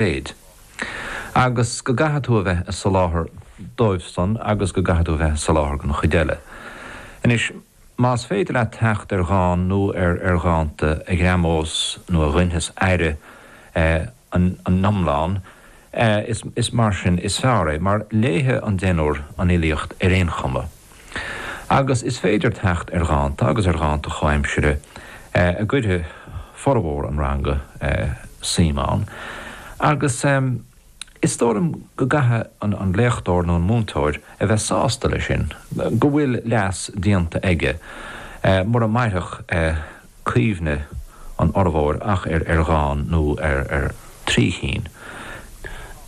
mhéid. Agus go gcaithfidh tú a bheith ag soláthar dóibhsan agus go gcaithfidh tú a bheith ag soláthar don chuid eile. Anois, más féidir leat theacht ar dhán nó ar ar dhánta a ghreamós nó a ghoinfeas aire an iomláin, is mar sin is fearr é, mar léifidh an deichniúr an fhilíocht ar aon chuma. Agus is féidir teacht ar dhánta, agus ar dhánta comhaimsire, a gcuirfidh formhór an ranga suim ann. Agus is dóigh liom go gcaithfidh an léachtóir nó an múinteoir a bheith sásta leis sin, go bhfuil leas déanta aige, mura mairfeadh cuimhne an fhormhóir ach ar dhán nó ar trí chinn.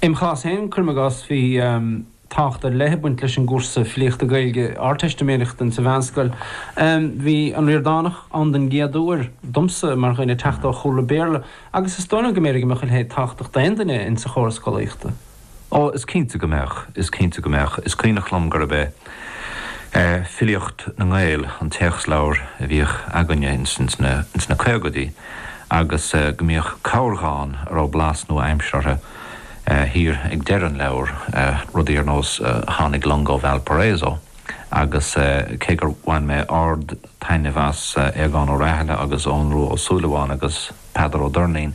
Im chás féin, cuirim i gcás, bhí. tábhacht ar leith ag baint leis an gcúrsa filíochta Gaeilge Ardteistiméireachta insa mheánscoil. Bhí an Ríordánach ann den gcéad uair, domsa, mar dhuine ag teacht ó chúlra Béarla, agus is dóigh liom go mb'fhéidir go mbeadh a leithéid tábhachtach d'aon duine insa chóras scolaíochta. Ó, is cinnte go mbeadh, is cinnte go mbeadh. Is cuimhneach liom gurb é Filíocht na nGael an téacsleabhar a bhíodh againne insna caogaidí agus go mbíodh corrdhán a raibh blas nua-aimseartha, thiar ag deireadh an leabhair, rudaí ar nós Tháinig long ó Valparaiso agus cé gur bhain mé ard-taitneamh as Aogán Ó Rathaille agus Eoghan Rua Ó Súilleabháin agus Peadar Ó Doirnín,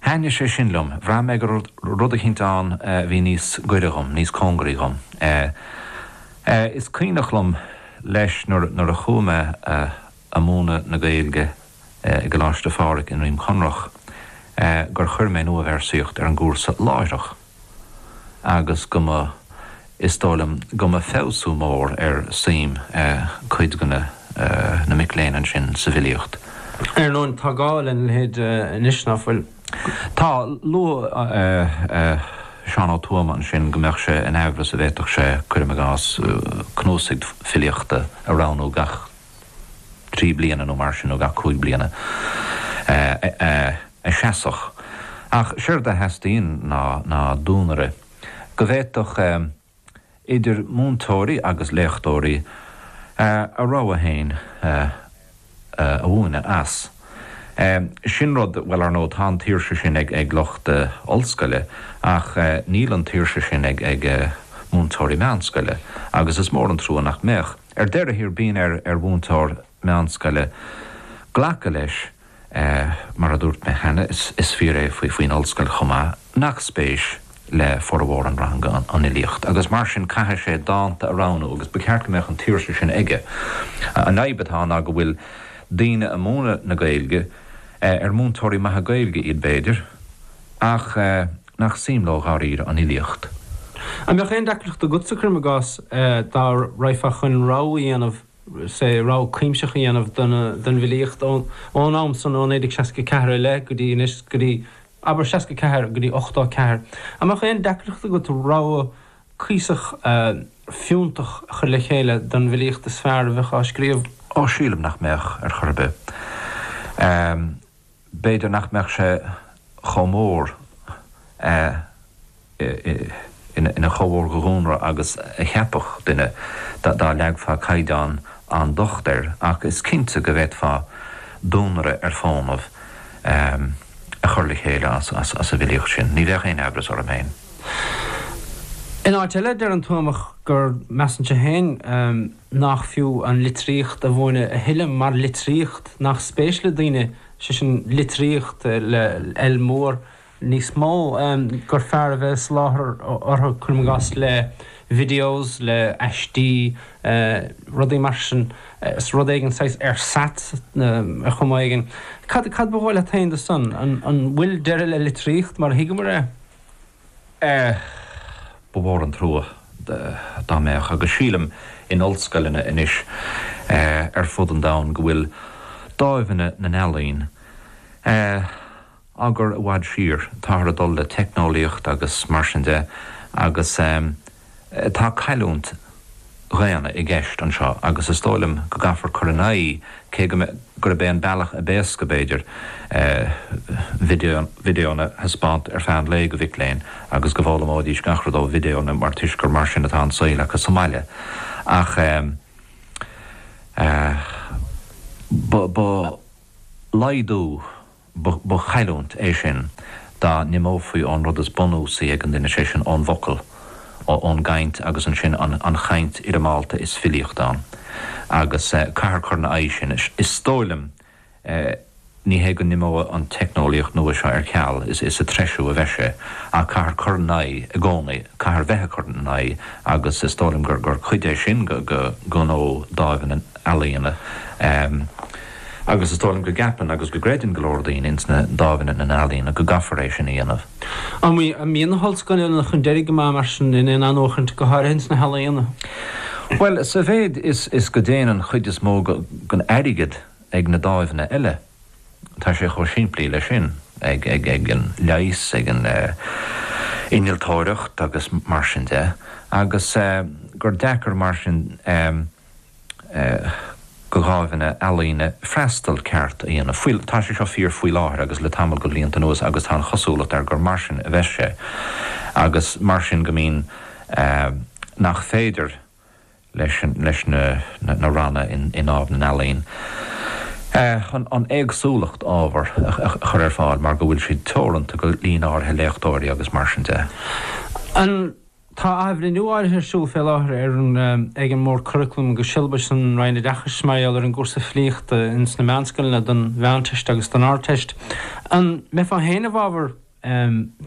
thaitnigh sé sin liom, bhraith mé go raibh rud eicínt ann a bhí níos goire dhom, níos cóngaraí dhom. Is cuimhneach liom, leis, nuair a chuaigh mé ag múineadh na Gaeilge i gColáiste Phádraig i nDroim Conrach, gur chuir mé nuabhéarsaíocht ar an gcúrsa láithreach agus go mba, is dóigh liom, go mba feabhsú mór ar suim cuid de na mic léinn ansin sa bhfilíocht. Ar ndóin, tá gá lena leithéid anois, ná fuil? Tá. Luaigh Seán Ó Tuama ansin go mbeadh sé in aimhreas an bhféadfadh sé, cuirim i gcás, cnuasaigh filíochta a roghnú gach. trí bliana nó mar sin, nó gach cúig bliana, a sheasfadh. Ach séard a theastaíonn ná duanaire, go bhféadfadh idir múinteoirí agus léachtóirí a rogha féin a mhúineadh as. Sin rud, bhuel, ar ndóigh, tá an tsaoirse sin ag lucht ollscoile, ach níl an tsaoirse sin ag ag múinteoirí meánscoile, agus is mór an trua nach mbeadh. Ar deireadh thiar bíonn ar mhúinteoir meánscoile glacadh leis, mar a dúirt mé cheana, is fíor é faoin ollscoil chomh maith, nach spéis le formhór an ranga an fhilíocht agus mar sin caithfidh sé dánta a roghnú agus ba cheart go mbeadh an tsaoirse sin aige. An fhadhb atá ná go bhfuil daoine ag múineadh na Gaeilge, ar múinteoirí maithe Gaeilge iad b'fhéidir, ach. nach suim leo dháiríre an fhilíocht. An mbeadh aon deacracht agatsa, cuirim i gcás, dá raghfá chun rogha a dhéanamh, sé, rogha cuimsitheach a dhéanamh don bhfilíocht ón am san, ó 1964 i leith go dtí anois, go dtí, abair, 64, go dtí 84, an mbeadh aon deacracht agat rogha cuíosach fiúntach a chur le chéile don bhfilíocht is fearr a bheadh á scríobh? Ó, sílim nach mbeadh, ar chor ar bith. B'fhéidir nach mbeadh sé chomh mór ina, chomh mór de dhuanaire agus a cheapfadh duine dá leagfá caighdeán an-docht air, ach is cinnte go bhféadfá duanaire ar fónamh a chur le chéile as an bhfilíocht sin. Ní bheadh aon amhras orm féin. In áit eile, deir an Tuamach gur, measann sé féin, nach fiú an litríocht a mhúineadh a thuilleadh mar litríocht, nach spéis le daoine, sé sin litríocht le L mór, níos mó, gur fearr a bheith ag soláthar dóibh, cuirim i gcás, le videos, le aistí, rudaí mar sin, nó rud éigin saghas ersatz ar chuma éigin. Cad ba dhóigh leat féin de sin? An bhfuil deireadh le litríocht mar a thuigeamar é? Ba mhór an trua dá mbeadh, agus sílim in ollscoileanna anois ar fud an domhain go bhfuil dáimheanna na n-ealaíon á gcur i bhfad siar, táthar ag dul le teicneolaíocht agus mar sin de agus. Tá cailliúint dhaonna i gceist anseo agus is dóigh liom go gcaithfear cur in aghaidh, cé go mbeidh, gurb é an bealach a b'éasca, b'fhéidir, video na thaispeáint ar feadh an lae do mhic léinn agus go bhfoghlaimeoidís gach rud ó videonna mar toisc gur mar sin atá an saol acu sa mbaile. Ach ba laghdú Ba chailliúint é sin dá n-imeofaí ón rud is bunúsaí ag an duine, sé sin, ón bhfocal, ón gcaint agus ansin an chaint fhoirmeálta is filíocht ann. Agus caithfear cur ina aghaidh sin, is dóigh liom. Ní hé go n-imeoidh an teicneolaíocht nua seo ar ceal, is ag treisiú a bheidh sé, ach caithfear cur ina aghaidh i gcónaí, caithfear bheith ag cur ina aghaidh agus is dóigh liom gur cuid é sin de ghnó Dáimh na nEalaíon. Agus is dóigh liom go gceapann agus go gcreideann go leor daoine ins na dámhanna ealaíona go gcaithfear é sin a dhéanamh. An mbíonn na hollscoileanna chun deiridh go maith, mar sin, in aon athnuachaint, go háirithe ins na healaíona? Bhuel, sa mhéid is go dtéann an chuid is mó den airgead ag na dámhanna eile, tá sé chomh simplí leis sin, ag an leigheas, ag an innealtóireacht agus mar sin de, agus gur deacair mar sin. do dhámhanna ealaíona freastal ceart a dhéanamh. Tá sé seo fíor faoi láthair agus le tamall de bhlianta anuas agus tá an chosúlacht air gur mar sin a bheas sé agus mar sin go mbíonn nach féidir leis na ranna i nDámh na nEalaíon an éagsúlacht ábhar a chur ar fáil mar go bhfuil siad teoranta go líon áirithe léachtóirí agus mar sin de. Tá athbhreithniú áirithe ar siúl fé láthair ar an ag an mBord Curaclaim agus Siollabais san Roinn Oideachais mar gheall ar an gcúrsa filíochta ins na meánscoileanna don Mheánteist agus don Ardteist. An mbeifeá féin i bhfábhar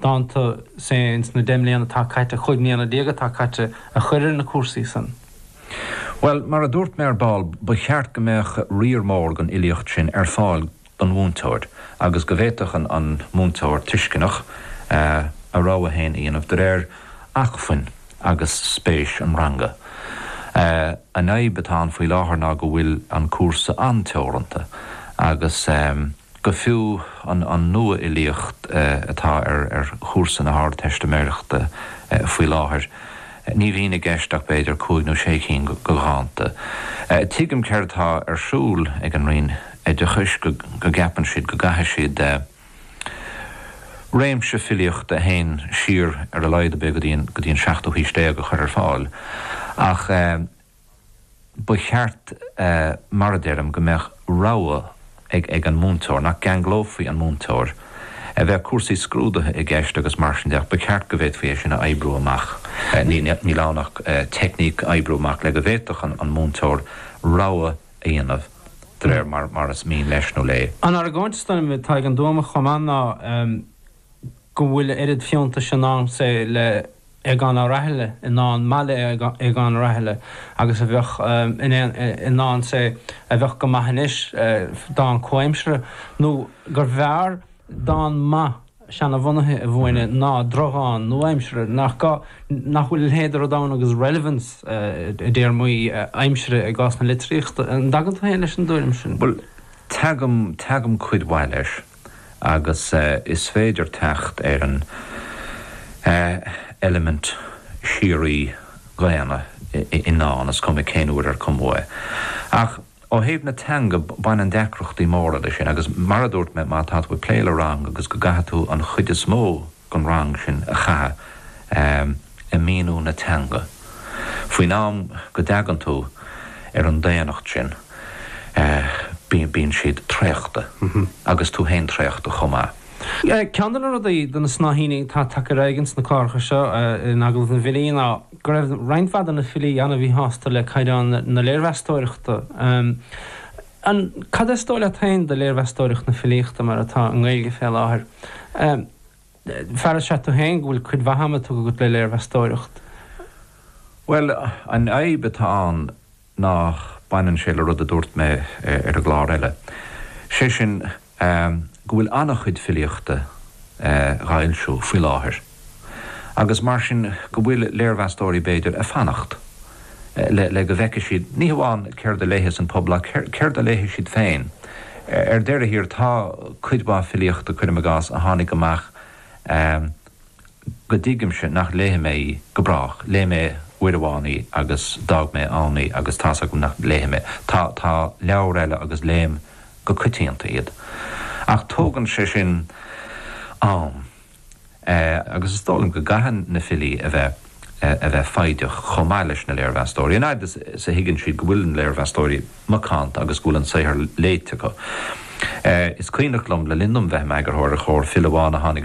dánta, say, ins na deich mbliana atá caite, chúig mbliana déag atá caite, a chur ar na cúrsaí san? Bhuel, mar a dúirt mé ar ball, ba cheart go mbeadh riar mór den fhilíocht sin ar fáil don mhúinteoir agus go bhféadfadh an an múinteoir tuisceanach a rogha féin a dhéanamh de réir acmhainn agus spéis an ranga. An fhadhb atá ann faoi láthair ná go bhfuil an cúrsa an-teoranta agus go fiú an an nua-fhilíocht atá ar chúrsa na hArdteistiméireachta faoi láthair, Ní bhíonn i gceist ach b'fhéidir cúig nó sé cinn de dhánta. Tuigim céard atá ar siúl ag an Roinn Oideachais, go gceapann siad go gcaithfidh siad réimse filíochta a théann siar ar a laghad ar bith go dtí an seachtú haois déag a chur ar fáil ach, ba cheart, mar a deirim, go mbeadh rogha ag an múinteoir, nach gceanglófaí an múinteoir, a bheadh cúrsaí scrúdaithe i gceist agus mar sin de, ba cheart go bhféadfaí é sin a oibriú amach. Níl ann ach teicníc a oibriú amach le go bhféadfadh an múinteoir rogha a dhéanamh de réir mar is mian leis nó léi. An argóint is doimhne atá ag an dTuamach chomh maith ná. go bhfuil a oiread fiúntais i ndán, say, le hAogán Ó Rathaille, i ndán maith le hAogán Ó Rathaille, agus a bheadh i ndán, say, a bheadh go maith anois, dán comhaimseartha, nó gurbh fhearr dán maith seana-bhunaithe a mhúineadh ná drochdhán nua-aimseartha. Nach gá nach bhfuil a leithéid de rud ann agus relevance, i dtéarmaí aimsire i gcás na litríochta? An dtagann tú féin leis an dtuairim sin? Bhuel, tagaim, tagaim cuid mhaith leis. agus is féidir teacht ar an eilimint síoraí dhaonna i ndán, is cuma cén uair a cumadh é. Ach ó thaobh na teanga, baineann deacrachtaí móra leis sin, agus mar a dúirt mé, má tá tú ag plé le rang agus go gcaithfidh tú an chuid is mó den rang sin a chaitheamh ag míniú na teanga. Faoin am go dtagann tú ar an daonnacht sin bíonn siad traochta agus tú féin traochta chomh maith. Ceann de na rudaí, de na snáithíní atá tagtha ar aghaidh sna cláracha seo in Agallamh na bhFilí ná go raibh roinnt mhaith de na filí an-mhíshásta le caighdeán na léirmheastóireachta. Cad is dóigh leat féin de léirmheastóireacht na filíochta mar atá i nGaeilge fé láthair? Fear is ea tú féin go bhfuil cuid mhaith ama tugtha agat le léirmheastóireacht. Bhuel, an fhadhb atá ann ná baineann sé le rud a dúirt mé ar an gclár eile, sé sin Ehm, go bhfuil an-chuid filíochta eh dha fhoilsiú faoi láthair agus mar sin go bhfuil léirmheastóirí b'fhéidir a' fanacht eh le, le go bhfeicfidh siad ní hamháin céard a léifeas an pobal ach céard, céard a léifidh siad féin. Ar deireadh thiar tá cuid mhaith filíochta, cuirim i gcás, a tháinig amach eh, go dtuigimse nach léifidh mé í go brách, léigh mé uair amháin í agus d'fhág mé ann í agus tá's agam nach léifidh mé, tá, tá leabhair eile agus léim go coitianta iad ach tógann sé sin am eh agus is dóigh liom go gcaithfidh na filí a bheith, a bheith foighdeach chomh maith leis na léirmheastóirí, an fhaid is, is a thuigeann siad go bhfuil na léirmheastóirí macánta agus go bhfuil an saothar léite acu. Eh is cuimhneach liom le linn dom bheith im eagarthóir ar Chomhar, file amháin a tháinig